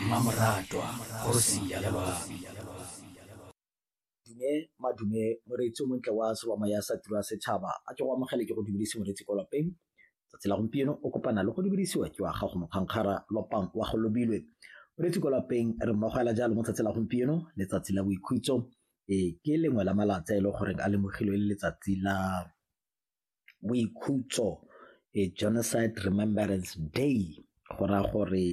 Mmamoratwa kgosi ya Lebami. Dume madume moreetsi o montle wa sewa moya sa tiro ya setšhaba a ke go amogele ke go dubedise moreetsi kwa lapeng tsatsi la gompieno o kopana le go dubedisiwa ke wa gago mokgankgara lopang wa go lobilwe moreetsi kwa lapeng re mmogo ela jalo mo tsatsi la gompieno letsatsi la boikhutso e ke lengwe la malatsi a e le goreng a lemogilwe le letsatsi la boikhutso Genocide Remembrance Day go raya gore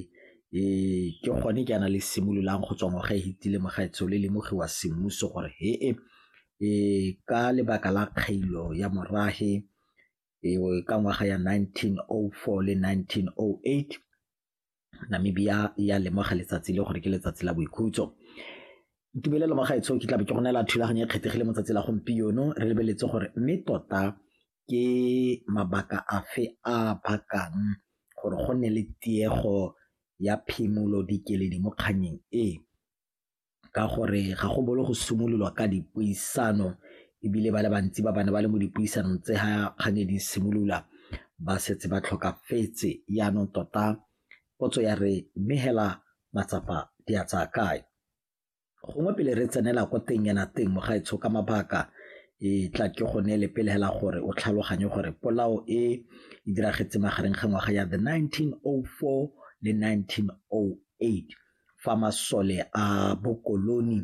ke gone jaana le simololang go tswa ngwaga e fetile mogaetsho le lemogiwa semmuso gore he e ka lebaka la kgailo ya morafe ka ngwaga ya nineteen oh four le nineteen oh eight Namibia e a lemoga letsatsi le gore ke letsatsi la boikhutso. Tumelelo mo gaetsho ke tlabe ke go neela thulaganyo e kgethegile mo tsatsi la gompieno re lebeletse gore mme tota ke mabaka afe a bakang gore go nne le tiego ya phimolo dikeledi mo kgannyeng e. ka gore ga go bolo go simololwa ka dipuisano ebile ba le bantsi ba bane ba le mo dipuisanong tse ga kgang e di simolola ba setse ba tlhokafetse yaanong tota potso ya re mme hela matsapa di a tsaya kae gongwe pele re tsenela ko teng yana teng mogaetsho ka mabaka e tla ke go neele pele hela gore o tlhaloganye gore polao e e diragetse magareng ga ngwaga ya the 1904 le 1908 fa masole a bokoloni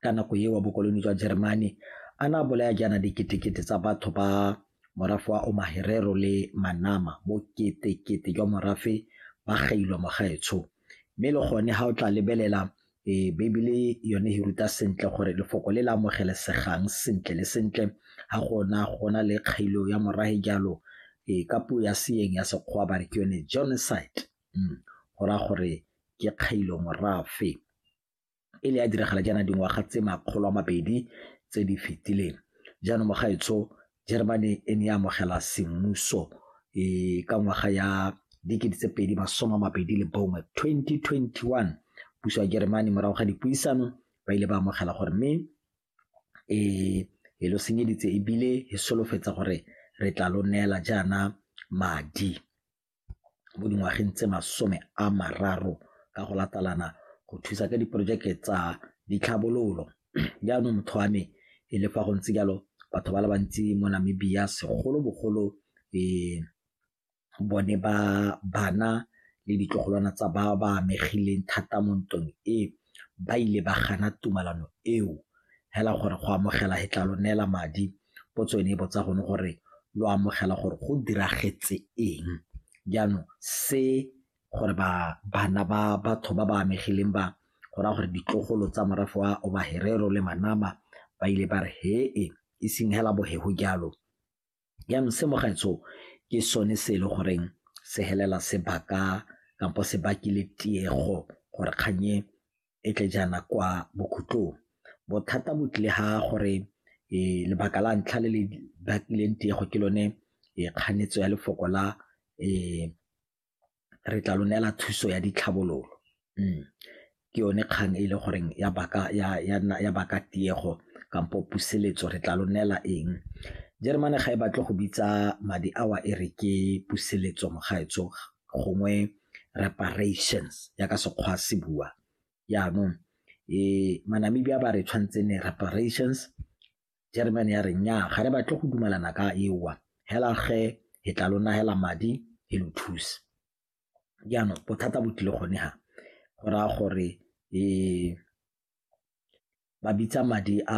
ka nako eo wa bokoloni jwa Jeremane a na bolaya jaana diketekete tsa batho ba morafe wa Omaherero le Manama boketekete jwa morafe ba gailwa mogaetsho mme le gone ga o tla lebelela e Bibele yone e ruta sentle gore lefoko le le amogelesegang sentle le sentle ga gona gona le kgailo ya morahe jalo e ka puo ya seeng ya sekgwa ba re ke yone genocide go raya gore ke kgailo morafe e ne ya diragala jaana dingwaga tse makgolo a mabedi tse di fetileng jaanong mogaetsho Germany e ne ya amogela semmuso um ka ngwaga ya dikete tse pedi masome a mabedi le bongwe 2021 puso ya Germany morago ga dipuisano ba ile ba amogela gore mme um e lo senyeditse ebile e solofetsa gore re tla lo neela jaana madi mo dingwageng tse masome a mararo ka go latalana go thusa ka diporojeke tsa ditlhabololo. Jaanong motho wa me e le fa go ntse jalo batho ba le bantsi mo Namibia segolobogolo bone ba bana le ditlogolwana tsa ba ba amegileng thata mo ntweng e, ba ile ba gana tumalano eo fela gore go amogela e tla lo neela madi Potso e ne e botsa gone gore lo amogela gore go diragetse eng. Jaanong se gore bana ba batho ba ba amegileng ba go raya gore ditlogolo tsa morafe wa Oba Herero le Manama ba ile ba re he e e seng hela bohego jalo. Jaanong se mo gaetsho ke sone se e le goreng se helela sebaka kampo se bakile tiego gore kgang e e tle jaana kwa bokhutlong. Bothata bo tlile ha gore lebaka la ntlha le le bakileng tiego ke lone kganetso ya lefoko la re tla lo neela thuso ya ditlhabololo. Ke yone kgang e le goreng ya baka tiego kampo puseletso re tla lo neela eng. Jeremane ga e batle go bitsa madi ao e re ke puseletso mo gaetsho gongwe reparations ya ka sekgwa se bua yaanong um manamibia ba re tshwanetse ne reparations german ya re nya ga re batle go dumalana ka ewa hela ge he tla lona hela madi he lo thuse jaanong bothata bo tlile gone ga go raya gore um ba bitsa madi a